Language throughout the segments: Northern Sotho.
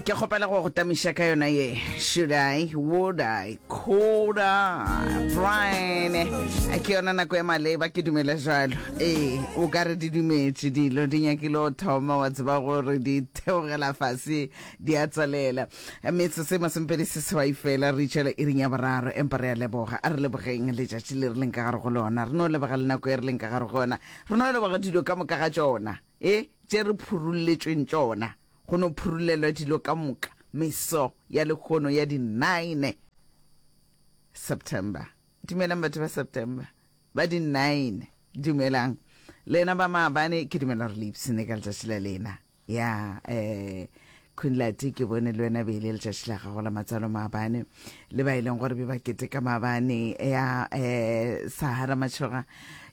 ke kgopela go go tamiša ka yona ye should i would i could i brian ke yona nako ya maleba ke dumela jalo ee o ka re di dumetše dilo di nyakile o thoma wa tseba gore di theogela fase di a tswalela metse se masempedi se sewai fela re itšela e ring ya boraro empa re a leboga a re lebogeng letšatši le re leng ka gare go lona re no leboga le nako e re leng ka gare go yona re no leboga dilo ka moka ga tšona E tše re phurulletšweng tšona, go no phurullelwa dilo ka moka meso ya lehono ya di nine September. Dumelang batho ba September ba di nine. Dumelang lena ba maabane, ke dumela gore le ipsene ka letšatši la lena. Ya, eh, Kunlati, ke bone le wena beile letšatši la gago la matsalo maabane le ba e leng gore be ba keteka maabane ya um sahara matšhoga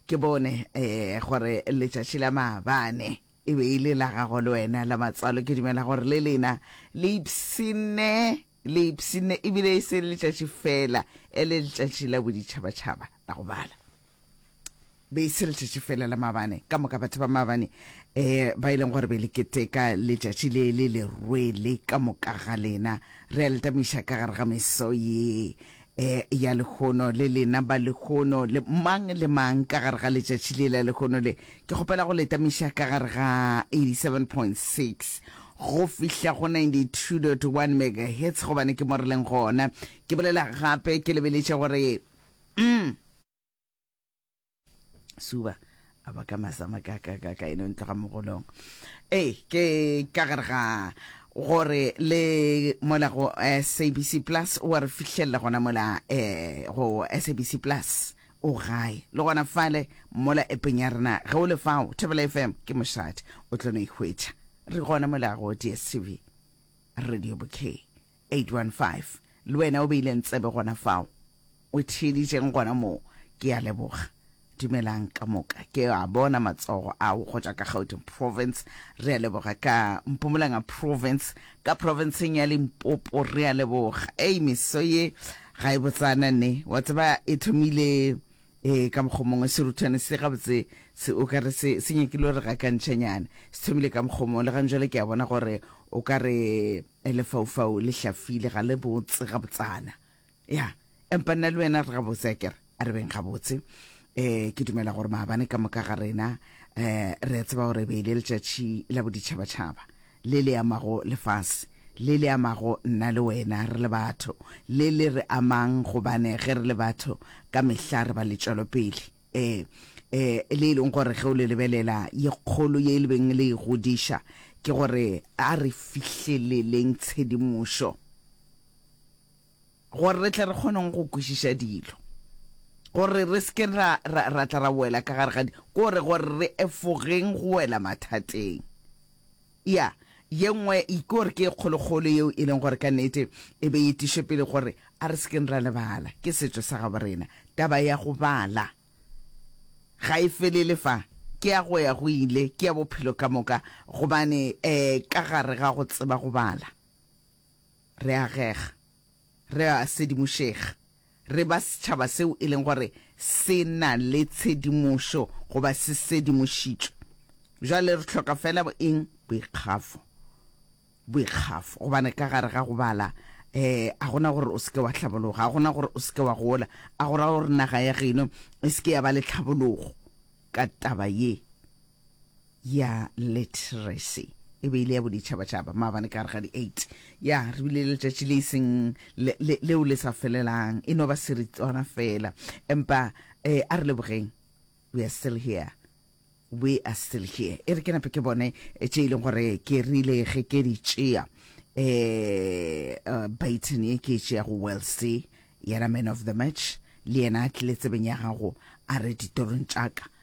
ke bone um gore letšatši la maabane e be e le la gago le wena la matsalo ke dumela gore le lena le ipsene Leipsine e bile e se letšatši fela e le letšatši la boditšhabatšhaba la go bala. Be e se letšatši fela la mabane. Ka moka batho ba mabane eh, ba e leng gore be le keteka letšatši le le le rwele ka moka ga lena. Re a le tamiša ka gare ga meso ye E, ya lehono, le lena ba lehono, le mang le mang ka gare ga letšatši le la lehono le, ke kgopela go le tamiša ka gare ga 87.6 go fihla go 92.1 megahertz, gobane ke mo re leng gona. Ke bolela gape, ke lebeletše gore, mm, suba a ba ka masama ka ka ka ka eno ntlo ga mogolong ee ke ka gare ga gore le mola go sabc plus wa re fitlhelela gona mola um go sabc plus o gae le gona fale mola epeng ya rena ge o le fao thebela fm ke mošate o tlo no ikgwetša re gona mola go dstv radio bouquet 815 Le wena o beileng tsebe gona fao, o theeditšeng gona moo, ke a leboga. Dumelang, ka moka ke a bona matsogo ao go tšwa ka Gauteng Province. Re a leboga, ka Mpumalanga Province, ka Provinceng ya Limpopo. Re a leboga. Ei, meso ye ga e botsana, nne. Wa tseba, e thomile, ee, ka mokgwa o mongwe. Seruthwane se, gabotse, se, o ka re se, se nyakile go re gakantšhanyana. Se thomile ka mokgwa o mongwe, le gane jwale ke a bona gore o ka re, Lefaufau le hlafile, ga le botse gabotsana. Ya, empa nna le wena re gabotse, akere? A re beng gabotse. Um, ke dumela gore maabane ka moka ga rena um re a tseba gore e be e le letšatši la boditšhabatšhaba, le le amago lefase, le le amago nna le wena re le batho, le le re amang gobane ge re le batho ka mehla re ba letšwelopele. e, e, le e leng gore ge o le lebelela, ye kgolo ye e lebeng le e godiša, ke gore a re fihleleleng tshedimošo gore re tle re kgoneng go kwešiša dilo gore re seke ra ra ra tla ra wela ka gare ga di gore gore re efogeng go wela mathateng Ya, ye nngwe ke gore ke e kgolokgolo yeo e leng gore ka nnete e be e tiše pele gore a re se keng ra lebala, ke setšo sa gabo rena. Taba ya go bala ga e felele fa, ke ya go ya go ile, ke ya bophelo ka moka, gobane um ka gare ga go tseba go bala re agega, re a sedimošega. re ba setšhaba seo e leng gore se na le tshedimošo goba se sedimošitšwe. Bjale re hloka feela eng? Boikgafo. Boikgafo. Gobane ka gare ga go bala, um, a go na gore o se ke wa hlabologa, a go na gore o se ke wa gola, a go ra gore naga ya geno e se ke ya ba le tlhabologo ka taba ye. ya literacy e be e le ya boditšhabatšhaba maabane ka gare ga di-eight ya re bile le letšatši le iseng leo le sa felelang e no ba seritswana fela empa um a re lebogeng we are still here we are still here e re ke nape ke bone eh, tše e leng gore ke rile ge ke di tšea um baton e ke e tšea go wellsy yena man of the match le yena a tlile tsebeng ya gago a re ditorong tšaka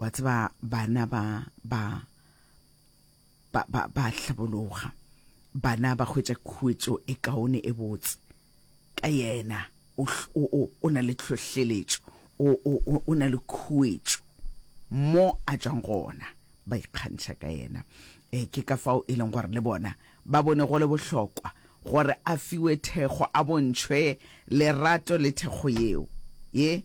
wa tseba bana ba ba ba ba ba hlabologa bana ba hwetša khuetšo e kaone e botse ka yena o o o na le tlhohleletšo o o o na le khuetšo mo a tšwang gona ba ikgantšha ka yena e ke ka fao e leng gore le bona ba bone go le bohlokwa gore a fiwe thekgo a bontšhwe lerato le thekgo yeo ye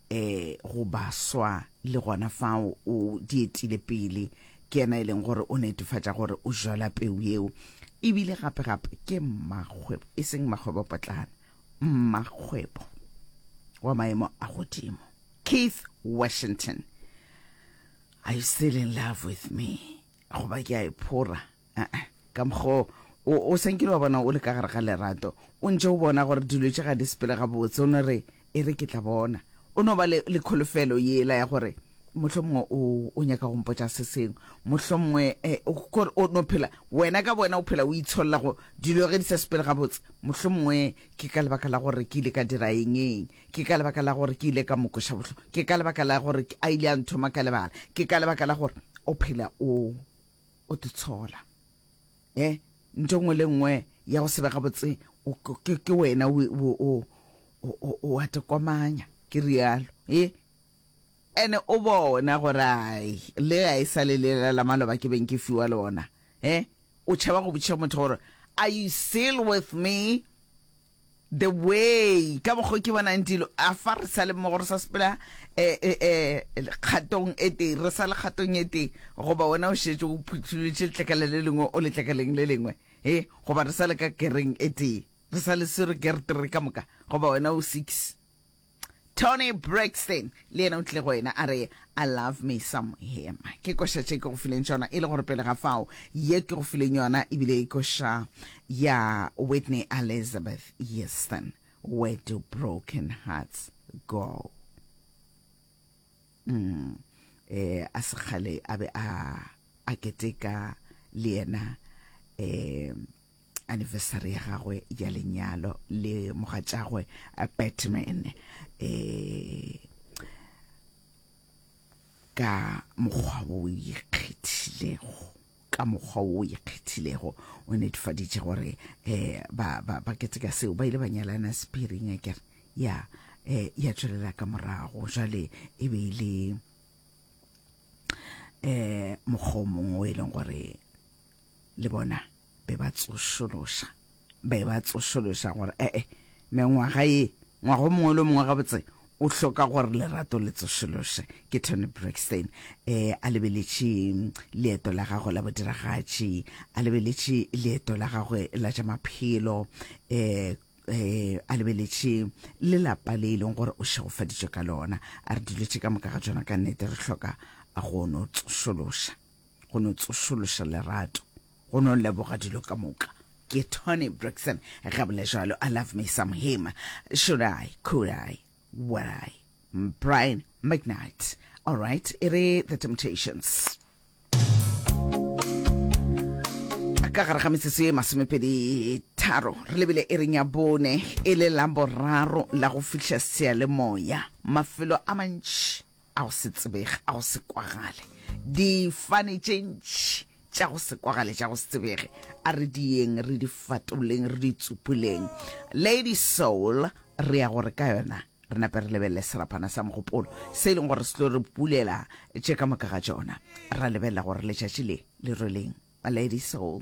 e go baswa le gona fao o di etile pele ke yena e leng gore o netefatša gore o jala peu yeo ebile gape gape ke mmakgwebo e seng mmakgwebo potlana mmakgwebo wa maemo a godimo keith washington are you still in love with me goba ke a e phora Aa, ka mokgwa o, o sa nkile wa bona o le ka gare ga lerato. O ntše o bona gore dilo tše ga di sepele gabotse. O no re, E re ke tla bona. O no ba le, le kholofelo yela ya gore mohlomongwe o, o nyaka go mpotša se sengwe. Mohlomongwe eh, o, kore o no phela, wena ka bowena o phela o itsholla go dilo ge di sa sepele gabotse. Mohlomongwe ke ka lebaka la gore ke ile ka dira eng, eng. Ke ka lebaka la gore ke ile ka mo kweša bohloko. Ke ka lebaka la gore a ile a nthoma ka lebala. Ke ka lebaka la gore o phela o. O di tshola. E, ntho e nngwe le nngwe ya go se be gabotse, ke wena o a tekomanya, ke rialo. E, ene o bona gore ai, le ga e sa le lela la maloba ke beng ke fiwa lona. E, o tšhaba go botšiša motho gore, Are you still with me? The way ka mokgo ke bonang dilo a fa re sa le mmogo re sa sepela eh, eh, eh, kgatong e tee re sa le kgatong e tee goba wena o šetše o phutholotše letlakala le lengwe o letlakaleng le lengwe e goba re sa le ka kereng e tee re sa le sero kertere ka moka goba wena o six Toni Braxton le yena o tlile go wena a re, I love me some him. Ke koša tše ke go fileng tšona e le gore pele ga fao ye ke go fileng yona e bile e koša ya Whitney Elizabeth Houston, Where do broken hearts go? Mm. Eh, a se kgale a be a a keteka le yena eh, anniversary ya gagwe ya lenyalo le mogatšagwe batman um ka mokgwa wo o ikgethilego ka mokgwa wo o ikgethilego o netefaditše gore um ba, ba, ba keteka seo ba ile ba nyalana sephiring a kere ya um ya tswelela ka morago jale e be e le um mokgwa o mongwe o e leng gore le bona be ba tsošološa, be ba tsošološa gore ee, mengwaga ye, ngwaga o mongwe le o mongwe gabotse o hloka gore lerato le tsošološe. Ke Toni Braxton e a lebeletše leeto la gagwe la bodiragatši, a lebeletše leeto la gagwe la tša maphelo, e e a lebeletše le lapa le e leng gore o šegofaditšwe ka lona. A re dilo tše ka moka ga tšona ka nnete re hloka a go no tsošološa. go no tsošološa lerato go no leboga dilo ka moka ke tony brixon ga bole jalo i love me some him should i could i would i brian mcnight all right e re the temptations ka gare ga metsotso e masomepedi tharo re lebile e reng ya bone e le la boraro la go fihla sealemoya mafelo a mantši a go se tsebege, a go se kwagale, difane tše ntši tša go se kwagale tša go se tsebege a re di yeng re di fatoleng re di tsupuleng lady soul re ya gore ka yona re nape re lebelele serapana sa mogopolo se e leng gore se tlo re bulela tše ka moka ga tšona ra lebelela gore letšatši le le rweleng lady soul